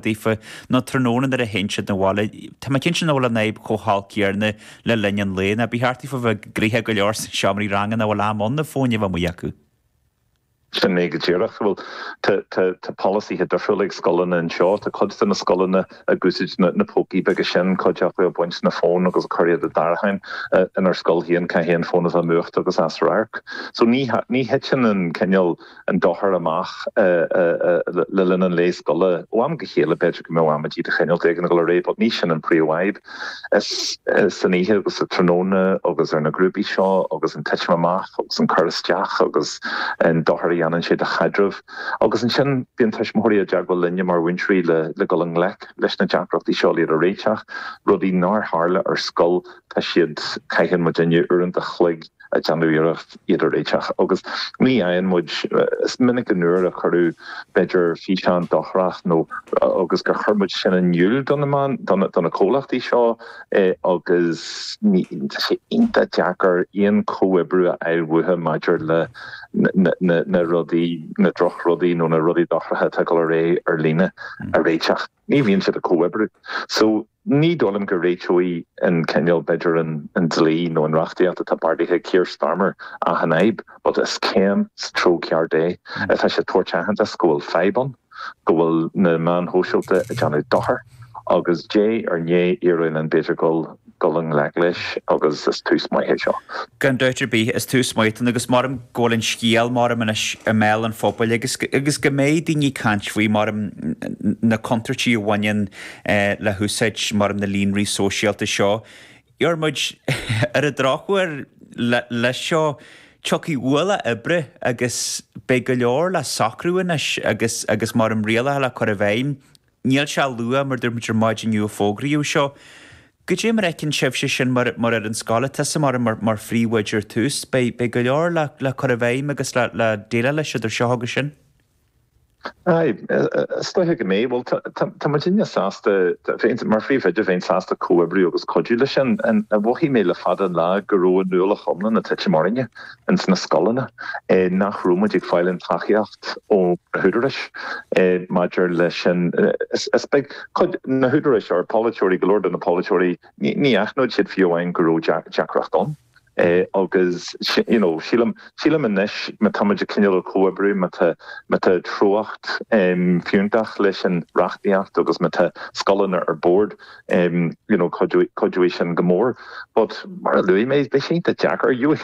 daofa, nó tráthnóna nuair a théann siad 'na bhaile. Tá mé cinnte nach bhfuil an fhadhb chomh holc céanna le linn an lae, nó ba cheart daofa a bheith gnoitheach go leor sna seomraí ranga nach bhfuil am ann na fóin a bheith amuigh acu. Sin é go díreach. Bhuel, tá polasaithe difriúla ag scoileanna anseo. Tá cuid de na scoileanna ag úsaid na pócaí beaga sin, cuid acu ag baint na bhfón agus ag cur iad i dtarraiceáin. Inár scoil féin caithfidh an fón a bheith múchta agus as radharc. So ní thiteann an cineál. an dochar amach le linn an lae scoile. Ó am go chéile b'fhéidir go mbeadh amaidí de chineál éigin ag dul ar aghaidh but ní sin an príomhfhadhb. Is san oíche agus sa tráthnóna agus ar na grúpaí seo agus an titim amach agus an cur isteach agus an dochar a dhéanann sé do chaidrimh. Agus ansin bíonn tuismitheoirí i dteagmháil linne mar mhúinteoirí le dul i ngleic leis na deacrachtaí seo, le iad a réiteach. Rudaí nár tharla ar scoil tá siad, caitheann muidinne uaireanta a chloig, ag déanamh iarracht iad a réiteach agus ní fhaigheann muid, is minic nuair a cuireadh b'fhéidir físeán dochrach nó agus gur chuir muid sin in iúl do na meáin, do na comhlachtaí seo é agus ní, tá sé iontach deacair aon comhoibriú a fháil uathu maidir le na rudaí, na drochrudaí nó na rudaí dochracha atá ag dul ar aghaidh ar líne a réiteach. ní bhíonn siad ag comhoibriú. So, ní dóigh liom go réiteoidh an cineál, b'fhéidir an dlí nó an reachtaíocht atá beartaithe ag Keir Starmer achan fhadhb, but is céim sa treo ceart é. Tá sé ag tabhairt aitheantas go bhfuil fadhb ann, go bhfuil na meáin shóisialta ag déanamh dochar, agus diaidh ar ndiaidh ar a laghad b'fhéidir go bhfuil, dul i ngleic leis agus is tús maith é seo. Gan dabht ar bith, is tús maith atá ann agus maram go bhfuil an scéal maram anois i mbéal an phobail agus agus go mbeidh daoine ag caint faoi maram na contúirtí a bhaineann le húsáid maram na líonraí sóisialta seo. A Dhiarmuid, Ar an drochuair, leis seo, tiocfaidh ualach oibre agus beidh go leor le socrú anois agus agus maram rialacha le cur i bhfeidhm. Anois tá sé luath, mar dúirt muid ar maidin inniu a fógraíodh seo. Goidé mar a fheiceann tusa sin, mar ar an scoil tusa mar, mar, mar phríomhoide ar tús? Beidh, beidh go leor le, le cur i bhfeidhm agus le, le déileáil leis idir seo agus sin. Aye, is doiche go mbeidh. Bhuel, tá, tá muidinne sásta, bheinn, mar phríomhoide bheinn sásta comhoibriú agus cuidiú leis sin. Mhothaigh mé le fada an lá go raibh an ualach iomlán a' titim orainne. ins na scoileanna, nach raibh muid ag fáil an tacaíocht ó na húdaráis maidir le sin. Is b'fhéidir cuid de na húdaráis, ár bpolaiteoirí, go leor de na polaiteoirí, ní aithneodh siad fiú amháin go raibh deacracht ann. Agus you know sílim, sílim anois má tá muid ag cineál ag comhoibriú, má tá, má tá treocht fiúntach leis an reachtaíocht agus má tá scoileanna ar bord, you know cuideoidh sin go mór but mar a luaigh mé beidh sé deacair you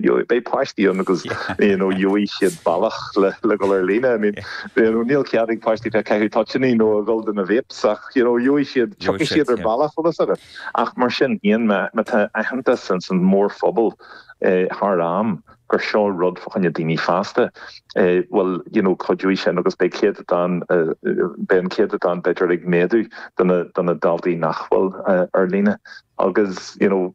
you beidh páistí ann agus you know gheobhaidh siad bealach le le gabháil ar líne I mean you know níl cead ag páistí bheith caitheamh toitiní nó ag gabháil do na vapes ach you know gheobhaidh siad tiocfaidh siad ar bealach tá a fhios agat ach mar sin má tá aitheantas ins an mórphobal eh, thar am gur seo rud fa choinne daoine fásta, eh, bhuel, you know, cuideoidh sin agus beidh céatadán, eh, beidh an céatadán b'fhéidir ag méadú de na, de na daltaí nach bhfuil, eh, ar líne. Agus, you know,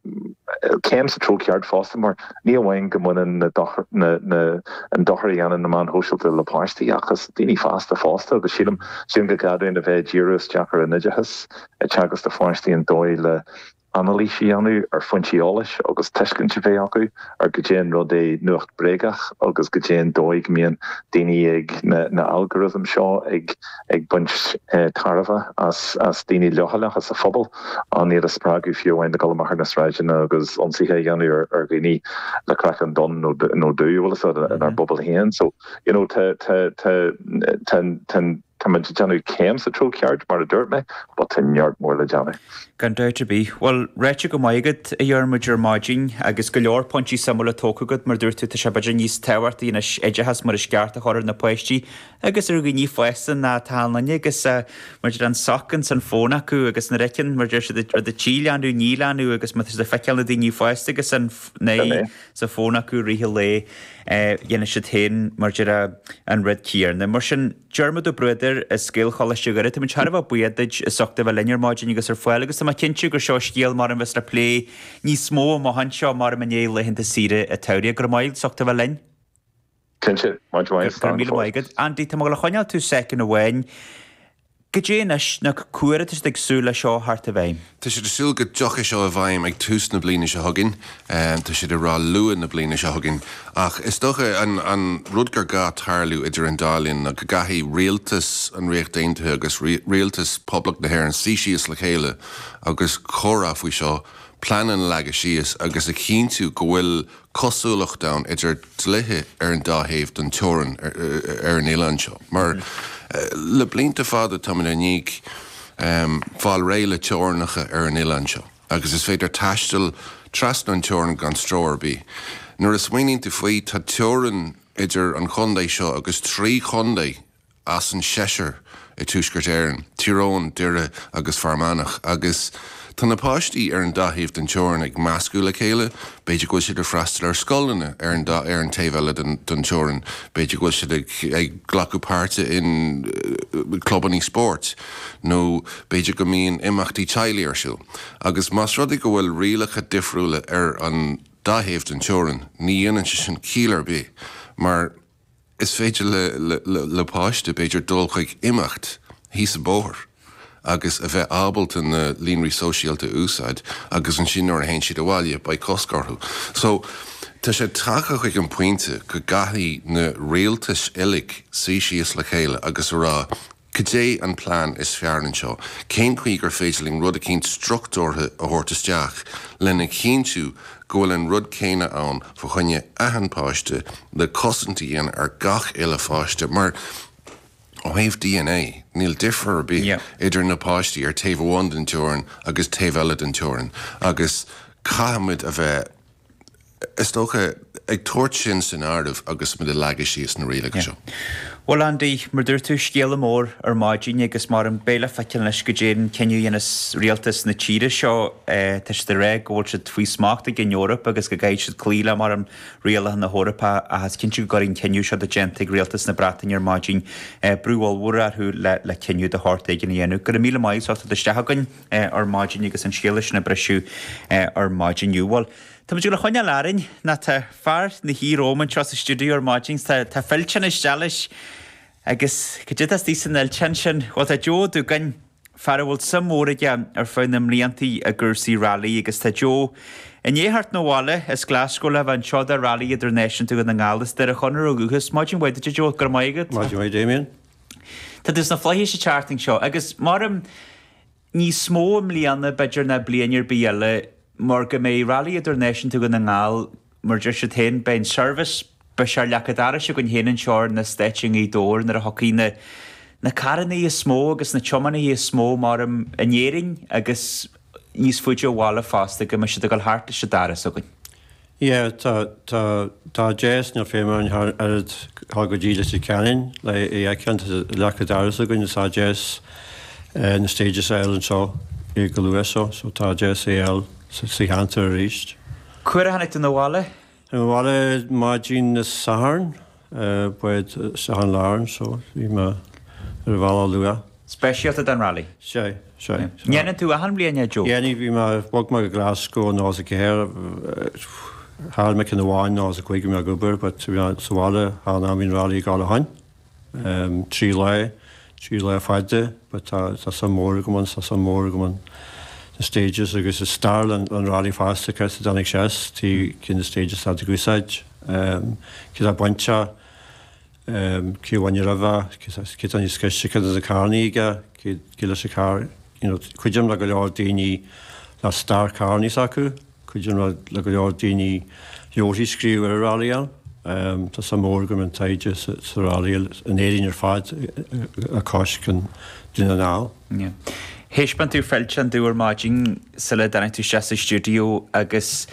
céim sa treo ceart fosta, mar ní amháin go mbaineann na dochar, na, na, an dochar a dhéanann na meáin shóisialta le páistí agus daoine fásta fosta agus sílim, sílim go gcaithfinn a bheith ag díriú isteach ar an oideachas ag teagasc do pháistí an dóigh le, anailís a dhéanamh ar foinsí eolais agus tuiscint a bheith acu ar goidé an rud é nuacht bréagach agus goidé an dóigh go mbíonn daoine ag na na algorithms seo ag ag baint tairbhe as as daoine leochaileacha sa phobal lena iad a spreagadh fiú amháin le dul amach ar na sráideanna agus ionsaithe a dhéanamh ar ar dhaoine le craiceann donn nó nó dubh a bhfuil fhios agat inár bpobal féin so you know tá tá tá tá tá Táimid ag déanamh céim sa treo ceart, mar a dúirt mé, but tá neart mór le déanamh. Gan dabht ar bith. Bhuel, ráite go maith agat, a Dhiarmuid, ar maidin, agus go leor pointí suimiúla tógtha agat, mar a dúirt tú, tá sé b'fhéidir níos tábhachtaí anois oideachas mar is ceart a chur ar na páistí, agus ar dhaoine fásta, atá linne, agus mar a deir an soc ins an fhón acu, agus an rud a fheiceann, mar a deir siad, rud a tchí leanbh, ní leanbh, agus má tá siad ag feiceáil na daoine fásta, agus an, na, sa fhón acu i rith an lae, déanfaidh siad féin mar a déarfá an rud céanna. Mar sin, Diarmaid Ó Bruadair as Gaelcholáiste Dhoire, táimid thar a bheith buíoch duit as ucht a bheith linn ar maidin agus ar fáil agus tá mé cinnte gur seo scéal mar a bheas le plé níos mó amach anseo, mar i ndiaidh laethanta saoire an tsamhraidh. Go raibh maith agat as ucht a bheith linn. Cinnte, much obliged, Go raibh míle maith agat, Andy. Tá mé ag coinneáil tú soicind amháin. Go díreach anois, cá huair atá siad ag súil leis seo theacht i bhfeidhm. Tá siad ag súil go dtiocfaidh seo i bhfeidhm ag tús na bliana seo chugainn. Tá siad ag rá luath na bliana seo chugainn. Ach is dócha, an an rud gur gá tarlú idir an dá linn ná go gcaithfidh rialtas an Ríocht Aontaithe agus rialtas Poblacht na hÉireann suí síos le chéile agus comhrá faoi seo, pleananna a leagadh síos agus a chinntiú go bhfuil cosúlacht ann idir dlíthe ar an dá thaobh den teorainn ar an oileán seo, mar le blianta fada táimid i ndiaidh fáil réidh le teorainneacha ar an oileán seo agus is féidir taisteal trasna an teorainn gan stró ar bith. Nuair a smaoiníonn tú faoi, tá teorainn idir an chontae seo agus trí chontae as an seisear i Tuaisceart Éireann, Tír Eoghain, Doire agus Fear Manach, agus tá na páistí ar an dá thaobh den teorainn ag meascadh le chéile, b'fhéidir go bhfuil siad ag freastal ar scoileanna ar an dá ar an taobh eile den teorainn, b'fhéidir go bhfuil siad ag ag glacadh páirte in clubanna spóirt nó b'fhéidir go mbíonn imeachtaí teaghlaigh ar siúl. Agus más rud é go bhfuil rialacha difriúla ar an dá thaobh den teorainn, ní dhéanann sé sin ciall ar bith mar, Is féidir le páiste, b'fhéidir, dul chuig imeacht síos an bóthar agus a bheith ábalta na líonraí sóisialta a úsáid agus ansin nuair a théann siad abhaile beidh cosc orthu. So, tá sé tagtha chuig an pointe go gcaithfidh na rialtais uilig suí síos le chéile agus a rá Cad é an plean is fearr anseo? Cén chaoi gur féidir linn rud inteacht struchtúrtha a thabhairt isteach lena chinntiú go bhfuil an rud céanna ann fa choinne achan páiste le cosaint a dhéanamh ar gach uile pháiste mar ó thaobh DNA níl difear ar bith idir na páistí ar taobh amháin den teorainn agus taobh eile den teorainn agus caithfimid a bheith is dócha, ag tabhairt sin san áireamh agus muid ag leagadh síos na rialacha seo. Yeah. Bhuel Andy, mar dúirt tú, scéala mór ar maidin agus maram beidh le feiceáil anois go dté an cinneadh a dhéanas rialtas na tíre seo. Tá siad ag rá go bhfuil siad faoi smacht ag an Eoraip agus go gcaithfidh siad cloí le, maram, rialacha na hEorpa ach is cinnte go gcuirfidh an cinneadh seo atá déanta ag rialtas na Breataine ar maidin brú ollmhór orthu le cinneadh de shórt éigin a dhéanamh. Go raibh míle maith agat as ucht a theacht isteach againn. ar maidin agus an scéala sin ag briseadh ar maidin inniu. Bhuel, tá muid le coinneáil orainn. Now tá fear na hUí-Róm anseo sa stiúideo ar maidin agus tá fillteán isteach leis agus cad é atá istigh san fhillteán sin? Bhuel, tá Joe Duggan, fear a bhfuil suim mhór aige ar feadh na mblianta i gcúrsaí railí agus tá Joe i ndiaidh theacht 'na bhaile as Glaschú lena bhean Jo do Railí Idirnáisiúnta Dhún na nGall is Doire Chonaire ó dhúchas. Maidin mhaith duit, a Joe. Go raibh maith agat. Maidin mhaith, Damien. Tá tú sna Flaithis an tseachtain seo, agus maram, níos mó i mbliana, b'fhéidir, ná bliain ar bith eile, mar go mbeidh Railí Idirnáisiúnta Dhún na nGall, mar a deir siad féin, beidh an Service, beidh sé ar leac an dorais againn féin anseo ar na Stáití i nGaoth Dobhair nuair a thiocfaidh na na carrannaí is mó agus na tiománaithe is mó, maram, in Éirinn agus níos faide ó bhaile fosta, go mbeidh siad ag dul thart leis an doras againn. Yeah, tá, tá, tá deas, níl feidhm orainn a ghabháil go dtí Leitir Ceanainn le é fheiceáil, tá leac an dorais againn is tá deas eh na stages a fháil anseo eh go luath so, so tá deas é a fháil sa sa cheantar aríst. Cá huair a tháinig tú na bhaile? Tá mé abhaile maidin Dé Sathairn. Bád Seán Larne so bhí mé ar an bhealach luath. speisialta don rally. Sea, sea. An ndéanann tú achan bhliain é Joe? Déanaim, bhí mé, bhog mé go Glasgow i nócha is a ceathair, chaill mé ceann amháin nócha is a cúig bhí mé ag obair but bhí mé sa bhaile achan am bhí an rally ag dul ann. Trí lá. trí lá fada, but tá suim mhór agam ann, suim mhór agam ann, na stages agus i stair leis an rally fosta cá has a dtáinig sé as, caidé na stages atá siad ag úsáid, cé atá ag baint, cé a bhain roimhe, cé atá níos gaiste, caidé an carr a bhí aige, cé leis an carr, you know, cuidím le go leor daoine le stair carranna s'acu, cuidigh mé le go leor daoine leabharthaí a scríobh ar an rally ann. Tá suim mhór agam i dtaighde sa rally in Éirinn ar fad agus i nDún na nGall. Thaispeáin tú fillteán domh ar maidin sula dtáinig tú isteach sa stiúideo agus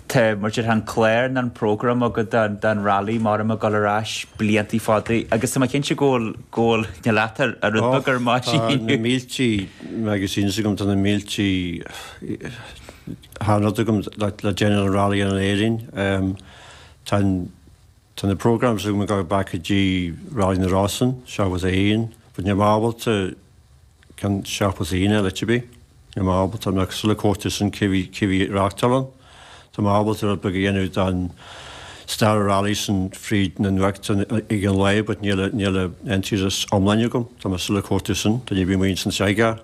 tá, mar a déarfá an clár, an prógram agat don rally maram ag dul ar ais blianta fada agus tá mé cinnte go bhfuil na leata a rud beag ar maidin. Tá na míltí magazines agam, tá na míltí Tá achan rud agam le déanamh leis an Rally in Éirinn. Tá an Tá na programs agam go back go dtí Rally na Rosann, seachtó is a haon, but níl mé ábalta ceann seachtó is a haon a fháil to be. Níl mé ábalta, tá mé still ag cuartú sin cé bhí cé bhí ag reáchtáil ann. Tá mé ábalta rud beag a dhéanamh don stair rally sin fríd na nuachtáin ag an lá but níl a níl a an tuairisc iomlán agam. Tá mé still ag cuartú sin. Tá ní bhím aon san seid gar.